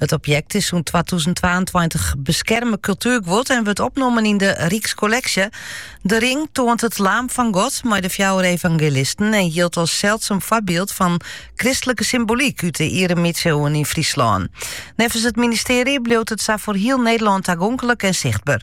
It objekt is sûnt 2022 beskerme kultuerguod en wurdt opnommen yn de Rykskolleksje. De ring toant it laam fan God mei de fjouwer evangelisten en jildt as seldsum foarbyld fan kristlike symbolyk út de iere middesiuwen yn Fryslân. Neffens it ministearje bliuwt it sa foar hiel Nederlân tagonklik en sichtber.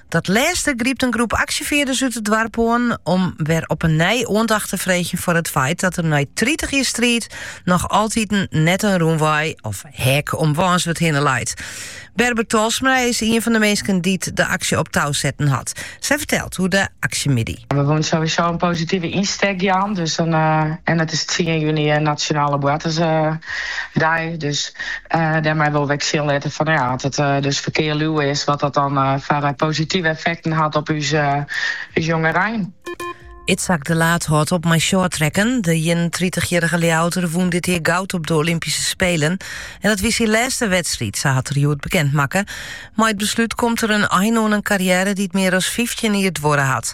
Dat lêste grypt in groep aksjefearders út it doarp oan om wer op 'e nij oandacht te freegjen foar it feit dat der nei tritich jier striid noch altiten net in rûnwei of hek om Wânswert hinne leit. Berber Talsma is ien fan de minsken dy't de aksje op tou setten hat. Sy fertelt oer de aksjemiddei. We woenen sowieso in positive ynstek jaan, dus dan, en it is tsien juny Nationale Boartersdei, dus Dêrmei wolle we ek sjen litte fan ja, as it dus ferkearsluwer is, wat dat dan foar positive effekten hat op ús jongerein. Itzhak de Laat hâldt op mei shorttracken. De ienentritich-jierrige Ljouwerter wûn dit jier goud op de Olympyske Spelen. En dat wie syn lêste wedstriid, sa hat er hjoed bekend makke. Mei it beslút komt der in ein oan in karriêre dy't mear as fyftjin jier duorre hat.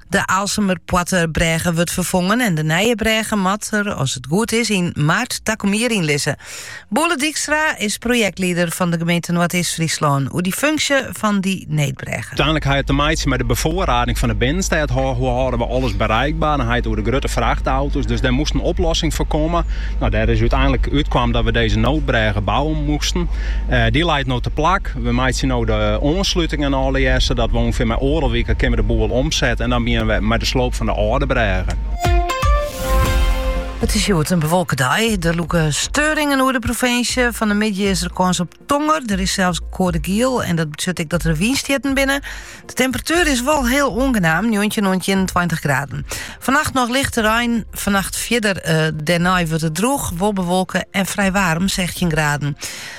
De Aalsumerpoartebrêge wurdt ferfongen en de nije brêge moat der, as it goed is, yn maart takom jier yn lizze. Boele Dykstra is projektlieder fan de gemeente Noardeast-Fryslân oer dy funksje fan dy needbrêge. Uiteindlik hie it te meitsjen mei de befoarrading fan de binnenstêd. Hoe hâlde we alles bereikbaar? Dan hie je it oer de grutte frachtauto's, dus dêr moast in oplossing foar komme. Dêr is úteinlik útkaam dat we dizze noodbrêge bouwe moasten. Dy leit no teplak. We meitsje no de oanslutingen allegearre, sadat we ûngefear mei oardel wike kinne we de boel omsette en dan begjinne we mei de sloop fan de âlde brêge. It is hjoed in bewolke dei. Der lûke steuringen oer de provinsje. Fan de middei is der kâns op tonger. Der is sels koade giel en dat betsjut ek dat der wynstjitten binnen. De temperatuur is wol hiel oangenaam, 19 oant 21 graden. Fannacht noch lichte rein, fannacht fierder eh, dêrnei wurdt it droech, wol bewolke en frij waarm, 16 graden.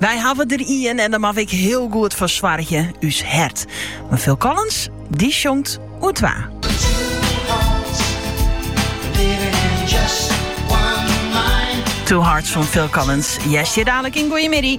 Wy hawwe der ien en dêr moatte we ek hiel goed foar soargje, ús hert. Mar Phil Collins, dy sjongt oer twa. Two Hearts fan Phil Collins hearst hjir dadelijk yn Goeiemiddei.